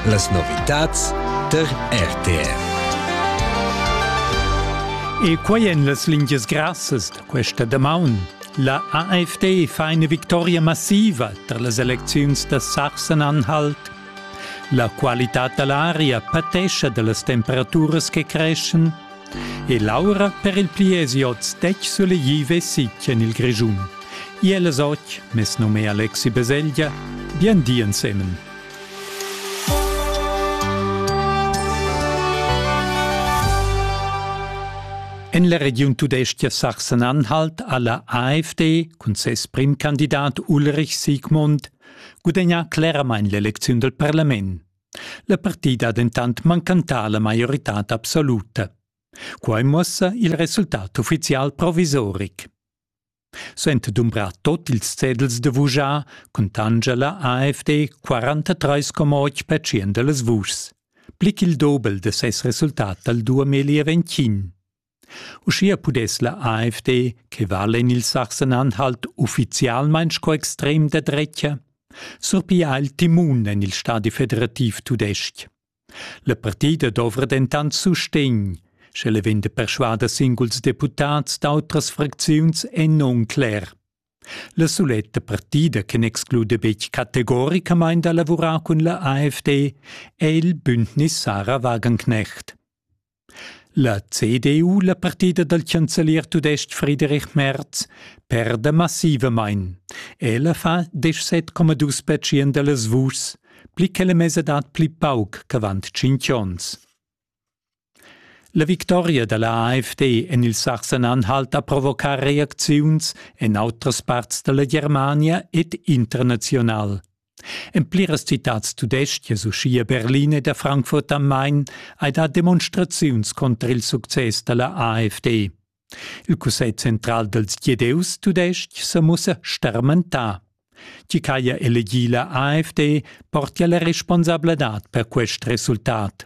Las novitads tar RTR. E quai en las lingias grassas da questa damaun. La AFD fa eine victoria massiva tar las elecziuns da Sachsen-Anhalt. La qualità da l'aria patescha da las temperaturas che creschen E l'aura per il pliezi oz detg sulegliva e sitg en il Grischun. Iel es och, mes num è Alexi Beselgia, bien di ensemen. En la regiun tudestia Sachsen-Anhalt ha la AfD cun ses primkandidat Ulrich Siegmund gudagnà cleramain l'elecziun dal parlament. La partida ha dentant mancantà la maioritad absoluta. Quai muossa il resultat uffizial provisoric. Sent dumbra tot ils cedels de vujar cun tangela AFD 43,8% de las vuschs, plic il dobel de ses resultat dal 2021. Uschia pudess la AfD, che vala en il Sachsen-Anhalt uffizialmain sco extrem da dretga, surpigliar il timun en il stadi federativ tudestg. La partida dovra dentant sustegn, sch'ella vegn da perschuader singuls deputads d'autras fracziuns è non cler. La suletta partida che n'exclude betg categoricamain da lavurar cun la AfD è il bündnis Sarah Wagenknecht. La CDU, la partida dal chancelier tudestg Friedrich Merz, perda massivamain. Ella fa 17,2 percent da las vuschs, pli che la mesadad pli pauc ch'avant tschintg onns. La victoria da la AfD en il Sachsen-Anhalt ha provocà reacziuns en autras parts da la Germania ed international. En pliras citads tudestgas, uschia Berlin e da Frankfurt am Main, hai dà demonstraziuns conter il success da la AfD. Il Cussegl central dals Gieus tudestg sa mussa starmentà. Chi ch'haja elegì la AfD portia la responsabladad per quest resultat.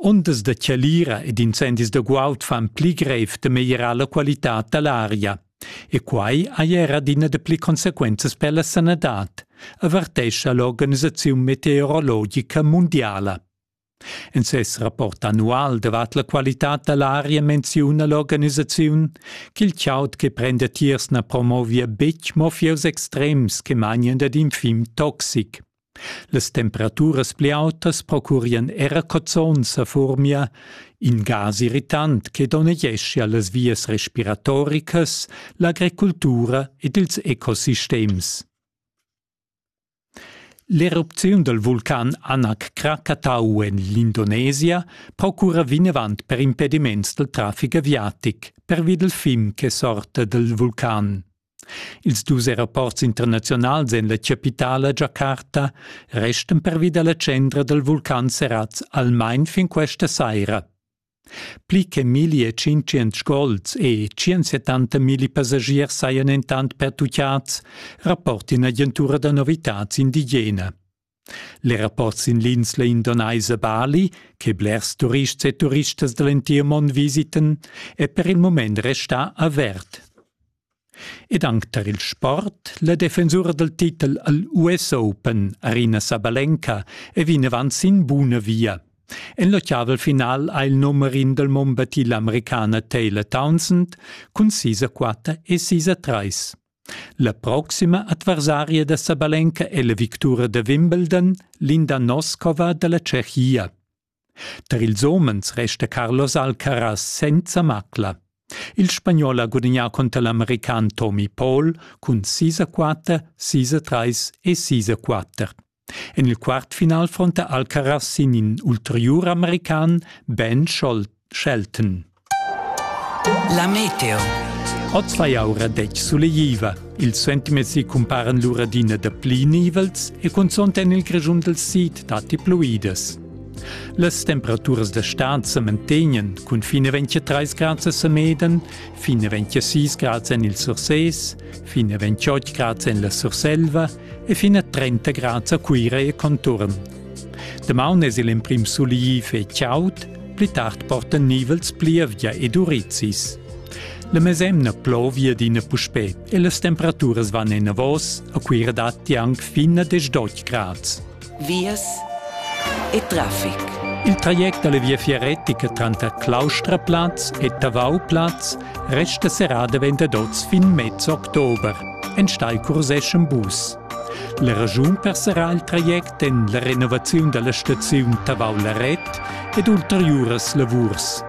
Ondas da chalira ed incendis da guaud fan pli grev da meglierar la qualitad da l'aria. E quai hai era adina dapli consequenzas per la sanadad, avertescha l'organisaziun meteorologica mundiala. En ses rapport annual davart la qualitad da l'aria menziuna l'organisaziun ch'il chaud che prenda tiers na promovia betg mo fieus extrems che mangian dad in fim toxic. Las temperaturas pli autas procurien era cozons a Furmia, in gas irritant che donnegescha las vias respiratoricas, l'agricultura ed ils ecosistems. L'erupziun dal vulcan Anak Krakatau en l'Indonesia procura vinavant per impediments dal traffic aviatic pervi dal fim che sorta dal vulcan. Ils dus aeroports internaziunals en la chapitala Giacarta restan pervi da la tschendra dal vulcan serrads almain fin questa saira. Pli che milli e tschintschient sgols e tschient milli passagiers sajan entant pertutgads, rapporta in'agentura da novitads indigena. Le rapport sin l'insla indonaisa Bali, che blers turists e turistas da l'entir mond visiten, è per il mument restà avert. Ed anc tar il sport, la defensura dal titel al US Open, Arina Sabalenka, è vinavant sin buna via. En l'ottavel final ha il numerin dal Mombati l'Americana Taylor Townsend cun sis a quatter e sis a trais. La proxima adversaria da Sabalenka è la victura da Wimbledon, Linda Noskova da la Tschechia. Tar ils homens resta Carlos Alcaraz senza macla. Il spagnol ha gudagnà cunter l'american Tommy Paul cun 6 a 4, 6 a 3 e 6 a 4. En il quartfinal fronta Alcaraz sin in ulteriur american Ben Shelton. La meteo. Oz vai aura detg sulegliva. Ils sentimezzi cumparan lura d'ina da pli nivels e cunzont en il grischun dal sid datti pluidas. Las temperaturas da stad sa mantegnan cun fine 23 grad a Sameden, fine 26 grad en il Surses, fine 28 grad en la Surselva e fin a 30 grads a Cuira e conturn. Damaun es il emprim suliv e chaud, pli tard portan nivels plievgia ed urizis. La mesemna plovia d'ina puspè e las temperaturas van enavos, a Cuira datti anc fin a 18 grads. vias e traffic. Il traject dalla viafier retica tranter Claustraplatz e Tavauplaz resta serrà davent ad oz fin mez october. Enstei curseschem bus. La ragiun per serrar il traject en la renovaziun dalla staziun Tavau-Laret ed ulteriuras lavurs.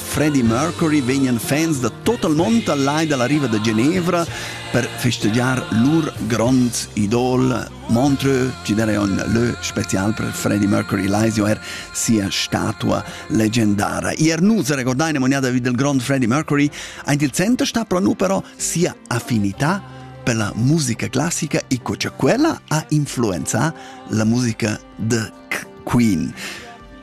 Freddie Mercury vegnan fans da total mont al lai dalla riva da Genevra per festegiar lur grond idol Montreux, ci darei un leu special per Freddie Mercury leisio er sia statua leggendara. Ier nu se recordai nemoniada del grond Freddie Mercury, aint il center sta pro nu però sia affinità per la musica classica e cosa quella ha influenzà la musica de Queen.